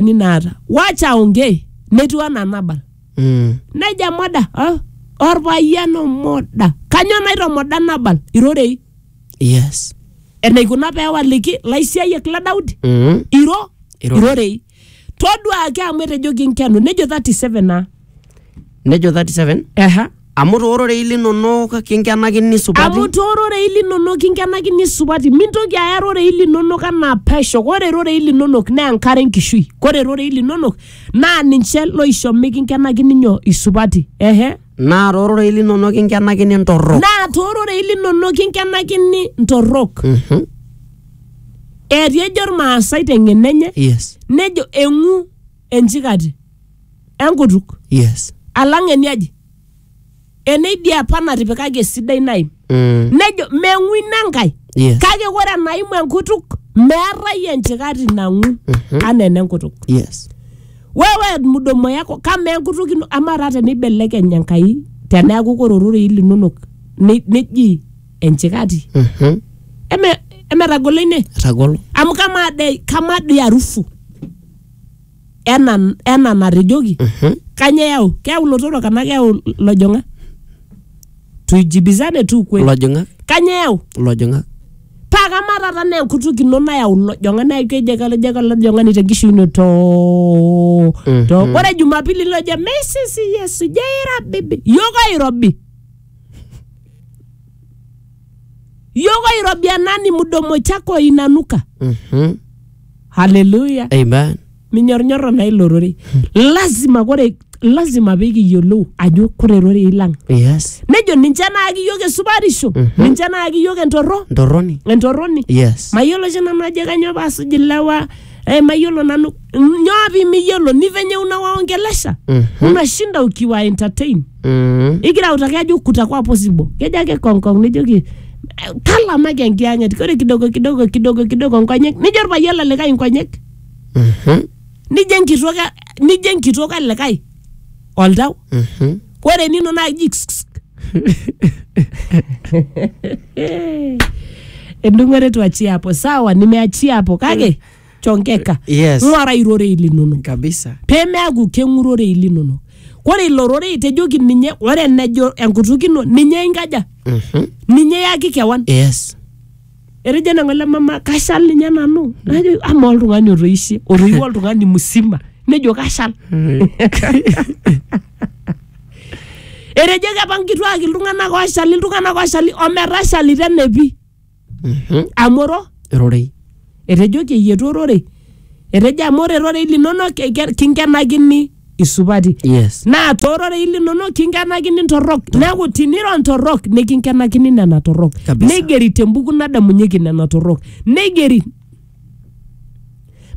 ni naata wacha aongee netiu anaa nabal Mm. neja moda ah, orpayian omoda kanyoo naitomoda nabal irorei Yes. enaikuna peewaliki laisiayiak le daudi Mm. iro Irorei. irorei toduaki amu etejoki nkenu nejo 37 naa nejo 37 Ehe. amu toororei linonok kinkenakini amu supati toororei linonok kinkenakini supati mintoki aya rorei linonok anaa pesho kore rorei linonok naa enkare enkishui kore rorei linonok naa ninche loisho mikinkenakini nyoo isupati ehe naa toororei linonok kinkenakini ntorrok naa toororei linonok kinkenakini ntorrok Mhm. etii ejo irmaasai teng'eno enye yes nejo eng'u enchikati enkutuk yes alang eniaji eneidia apa natipikaki esidai naim mm. nejo meng'u ina enkae yes kake ore enaimu enkutuk meetae enchikati nang'u anaa enenkutuk yes wewe mdomo yako kama enkutuk ino ama taa teneibelekeny enkai teneaku kore ororei linonok ne- neji enchikati Mhm. eme emetagolo ine etagolo amu kamaa dei kamaa dei arufu ena ena natejoki Mhm. kanyoo eyau keyau ilotorok anaa keyau ilojong'ak tuijibizane tu ukweli Ilojong'ak, kanyoo eyau ilojong'ak. paa kamaa taata naa enkutuk ino nayau ilojong'ak naa kejo ake kejo ake olojong'ani tenkishui ino too too Mhm. ore jumapili lojo meisisi yesu jeirabibi yiok oirobi yiok oirobi enani mudomo chako inanuka Mhm. haleluya Amen. minyornyoro naa ilo rorei lazima kore lazima pikiyiolou ajo kore rorei lang Yes. nejo ninche naaki yiok esupatisho ninche naaki yiok entorro Ntorroni. entorroni Yes. mayiolo oshi nanu ajo kanyoo paasuj ilewa eh, mayiolo nanu nyoo pimiyiolo ni venye unawaongelesha Mhm. unashinda ukiwa entertain Mm. igira autaki ajo kutakuwa possible kejo ake kongkong nijoki "Eh, talamaki enkiyang'et ore kidogo kidogo kidogo kidogo nkonyek nijo orpayian lelikae nkonyek Mhm. nijo enkitok e- nijo enkitok elikae oltau Mhm. ore nino naa iji ksksk. endung'ore tuachie hapo sawa nimeachia hapo kake tonkeka Yes. ng'uara irorei linonok kabisa pemeaku keng'urorei linonok ore ilo rorei tejoki ninye ore enejo enkutuk ino ninye inkaja Mhm. ninye yaki kewan yes etejo nang'o ele mama kashal ninye nanu najo ama oltung'ani otoishe otoiwuo oltung'ani musima nejo kashal etejo kepa nkituak iltung'anak oshali iltung'anak oshali ometashalita enepi Mhm. amu oro rorei etejoki eyietu ororei etejo amu ore rorei linonok eke- kinkenakini isupati yes naa toororei linonok kinkenakini ntorrok neeku tiniro ntorrok nikinkenakini nena torrok Kabisa. neigeri tembuku nadamunyeki nena torrok neigeri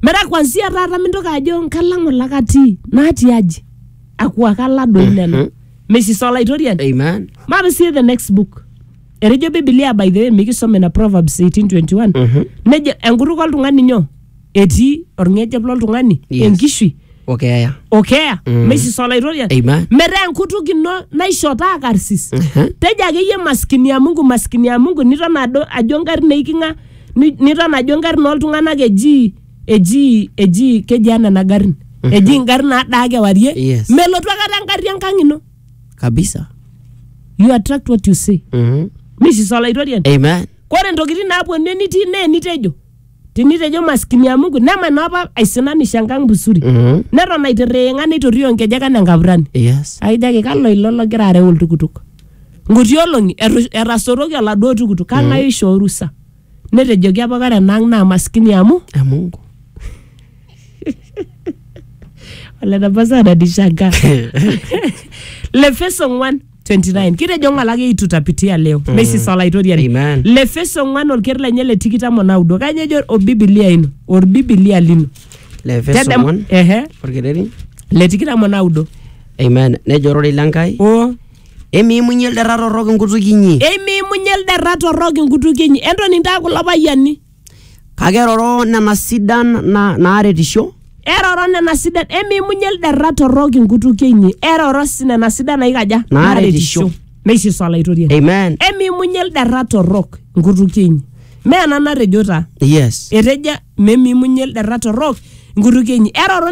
metaa kwansia taata mintoki ajo nkalang'u lakatii natii aji akuakala doi nena Mhm. misisa olaitoriani amen mapsie the next book etejo bibilia by the way mikisome na proverbs 1821 nejo enkutuk oltung'ani nyoo etii orng'ejep loltung'ani Yes. enkishui okeeya okeya mm. meisisa olaitoriani Amen. metaa enkutuk ino naisho taa karsis Mhm. tejo akeyie maskini ya mungu maskini ya mungu niton ado ajo ngarrin neiking'a ni- niton ajo ngarrin oltung'anak eji eji eji keji ana nena garrin eji ngarrin nadaa kewarie Yes. melotu akata engarri enkang ino kabisa you attract what you see mm mishisola itorian amen kore ntokitin naaponu enitii naa enitejo tinitejo maskini ya mungu neman apa aisinanisho enkang busuri mm neton aitirring'a neitorio nkejek anaa enkapurani yes aijaki kalo ilo logira areu oltukutuk nkuti olong'i etu- etasoroki oladuo tukutuk kang'ae oishoo orusa Netejoki apa kara enaang naa maskini amu ya Mungu. ole tapasa ananishangaa Lefeso 1:29 kitejo ng'ala ake itu tapitia leo meisisa olaitoriani Amen. Lefeso 1 olker lenye le tikitam o naudo kanya ejo obibilia ino orbibilia lino Lefeso Tedem- 1 ehe orkereri. le tikitam o naudo Amen. Nejo ororei le Nkai o Emiimunye ilderra torrok inkutukie inyi. Eimiimunye ilderra torrok inkutukie inyi. Entoni intae kulo payiani. Kake eroro nena sidan na, naaretisho. Eroro nena sidan. Emiimunye ilderra torrok inkutukie inyi. Eroro si nena sidan naikaja? Naaretisho. Neishiso Olaitoriani. Amen. Emiimunye ilderra torrok inkutukie inyi. Mee ena natejo taa. Yes. Etejo memiimunye ilderra torrok inkutukie inyi. Eroro nena